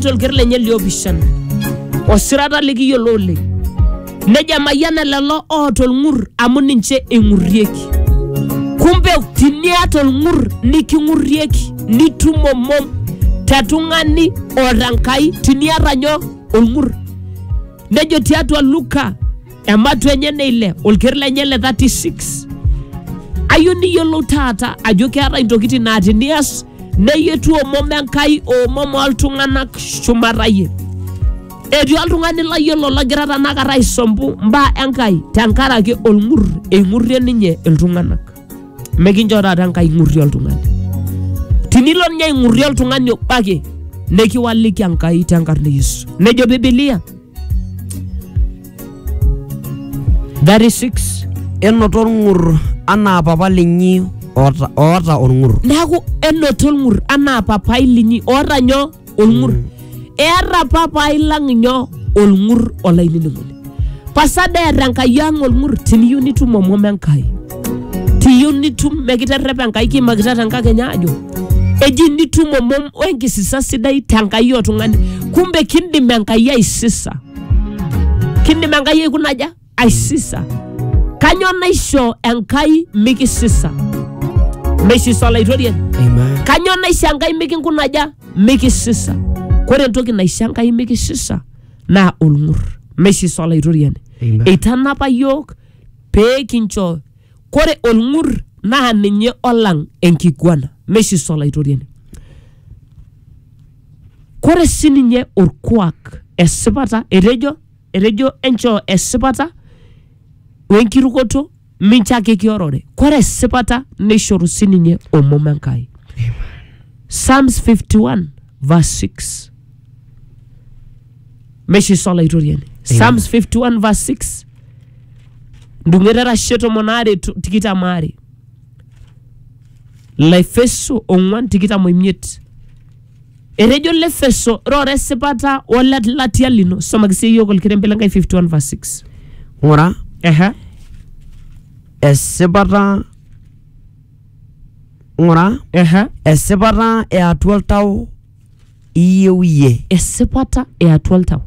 tolker lenye liopishana osirata likiyiolo oleng nejo emayiana lelo oota olng'ur amu ninche eing'urrieki kumbe tiniata olng'ur niking'urrieki nitum omom te tung'ani oota Enkai tiniata nyoo olng'ur nejo tiatua Luka ematua enye ne ile olker lenye le 36 ayieu niyiolou taata ajo keetae intokitin naa tinias neyie etu omom enkai omom oltung'anak shumata iyie etii oltung'ani layiolo lagira tanakata aisompu mbaa enkai tenkaraki olng'ur eing'urrie ninye iltung'anak mekincho taata enkai ing'urrie oltung'ani tinilo ninye aing'urrie oltung'ani obo ake nekiwaliki enkai tenkarna e yesu nejo bibilia That is six. Enoto olng'ur anaa papa linyi oota, oota olng'ur. neaku enoto olng'ur anaa papai linyi oota nyoo olng'ur eeta papai lang nyoo olng'ur olainining'oni pasada eeta enkai ang olng'ur tiniyieu nitum omom enkai tiyieu nitum mekiterrepa enkai kiimakita tenkakenya ajo eji nitum omom wenkisisa sidai tenkai oltung'ani kumbe kindim enkai aisisa kindim enkai aikunaja aisisa kanyoo naisho enkai mikisisa meisisa olaitoriani Amen. kanyoo naisho enkai mikinkunaja mikisisa kore entoki naisho enkai mikisisa naa olng'ur meisisa olaitoriani Amen. eitanapa yiok Pee kincho, kore olng'ur naa ninye olang enkiguana, meishiso Olaitoriani. Kore sii ninye olkuak esipata, etejo, etejo enchoo esipata o enkirukoto mincho ake kiorore. Kore esipata neishoru sii ninye omom Enkai. Psalms 51 verse 6. mesho iso olaitoriani psalms 51 verse 6 ndung'eta erashe tomon aare to- tikitam aare laefeso ong'uan tikitam oimiet etejo lefeso rora esipata olelatia lino somaki sii yiok olkerembe lenkai 51 verse 6 ng'ura Ehe. esipata ng'ura Ehe. esipata eatua oltau iyieu iyie. esipata e atua oltau.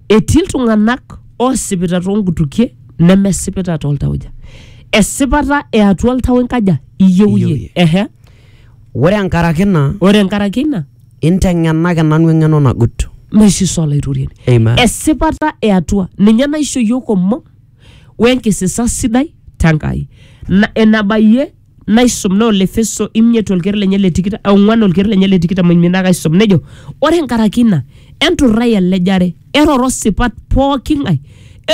Etii iltung'anak oosipita toonkutukie nemesipita tooltauja. Esipata e atua oltau inkaja iyieu Iyieu iyie. iyie. Ehe. Ore enkaraki ina, Ore enkaraki ina inteng'enaki nanu eng'eno nagut. naisisa olaitoriani. Amen. Esipata e atua ninye naisho iyiook omom wenkisisa sidai te Nkai. Na- Enabayie naisum naa Olefeso imiet olker lenye le tikitam ong'uan olker lenye le tikitam oimiet naa kaisum nejo ore nkaraki ina enturrai elejare eroro sipat pooki ng'ae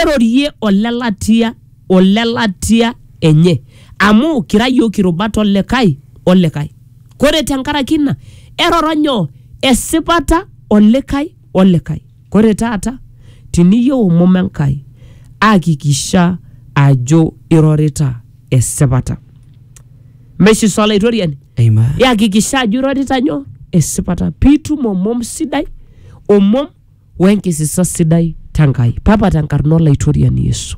erorie olelatia olelatia enye amu kira yiok irubat olikae olikae kore tenkaraki ina eroro nyoo esipata olikae olikae Kore taata tiniyou omom Enkai, akikisha ajo irorita esipata. Meshi sa Olaitoriani? Amen. Iyakikisha ajo irorita nyoo? Esipata. Piitum omom sidai, omom wenkisisa sidai t'Engai. Papa tenkarna Olaitoriani Yesu.